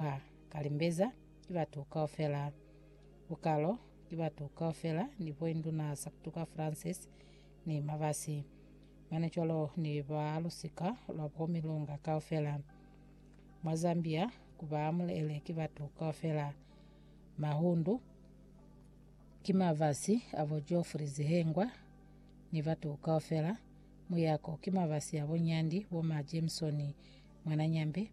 Ba ka limbeza ki batu kaufela. Bukalo ki batu kaufela ni Boinduna Sartuka Francis ni Mabasi. Mane cwalo ni ba lusika lwa bo Milonga kaufela. Mwa Zambia ku ba mulele ki batu kaufela. Mahundu ki mabasi a bo Geoffrey Zihengwa ni batu kaufela. Muyako ki mabasi a bo Nyandi, bo Ma Jameson Mwananyambe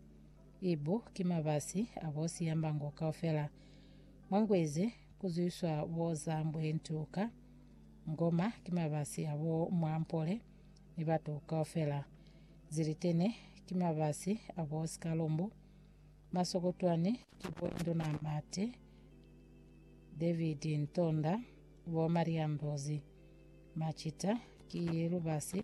Ibu ki mabasi a bo siyambango kaufela. Mwa ngwezi ku zwiswa bo za mbwe ntu ka ngoma ki mabasi a bo mwa mpole ni batu kaufela. Zilitene ki mabasi a bo sikalumbu. Masokotwani ki bo Nduna Mate, David Ntonda, bo Maria Ndozi. Macita ki lubasi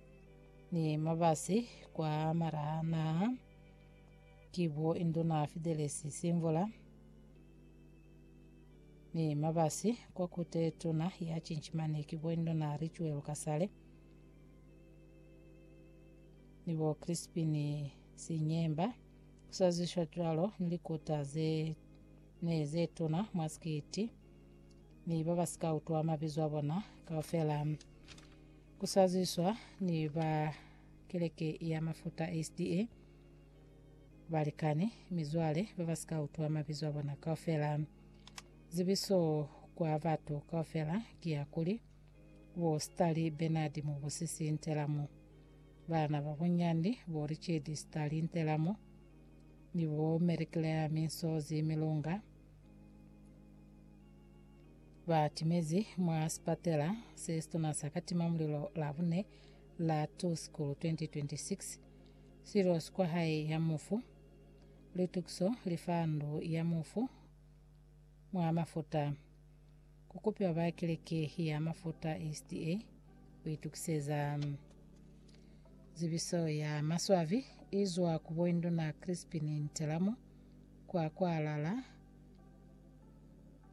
Ni mabasi kwa malaha naha ki bo Induna Fidelesi Simvula ni mabasi kwa Kute Tuna ya Cinchimani ki bo Induna Richuelu Kasale ni bo Crispini Sinyemba kusaziswa cwalo ni likuta ze ne ze tuna mwa sikiti ni ba ba si ka utwa mabizo a bona kaufela. Ku saziswa ni ba keleke ya Mafuta SDA, balikani, mizwale ba ba si ka utwa mabizo a bona kaufela. Zibiso kwa batu kaufela ki ya kuli, bo Starlee Bernard Mubusisi Ntelamo, bana ba bunyandi bo Richard Starlee Ntelamo ni bo Mary Claire Minsozi Milunga, ba timezi mwa sipatela se situna sa katima mulilo Labune la 2 Sikulu 2026, Silo si kwa hae ya mufu, litukiso li fa ndu ya mufu mwa mafuta, ku kupiwa ba keleke ya mafuta SDA ku itukiseza zibiso ya maswabi izwa ku Boinduna Crispin Ntelamo kwa kwalala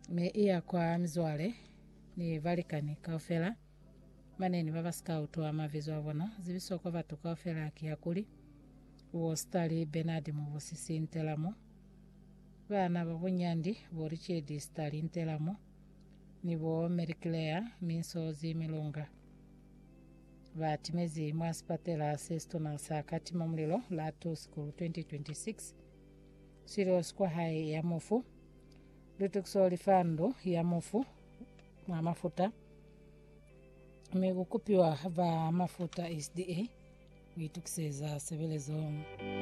ne i ya kwa mizwale ni balikani kaufela. Mane ni ba ba si ka utwa mabizo a bona. Zibiso kwa batu kaufela ki ya kuli, Wo Stali Bernard Mubusisi Ntelamo, baana ba bunyandi bo Richedi Stali Ntelamo ni bo Mary Claire Minsozi Milunga, ba timezi mwa sipatela se situna sa Katima Mulilo la 2 Sikulu 2026. Silios kwa hae ya mufu. Lutukiso li fa ndu ya mufu mwa mafuta, mi ku kupiwa ba mafuta SDA ku itukiseza sebelezo.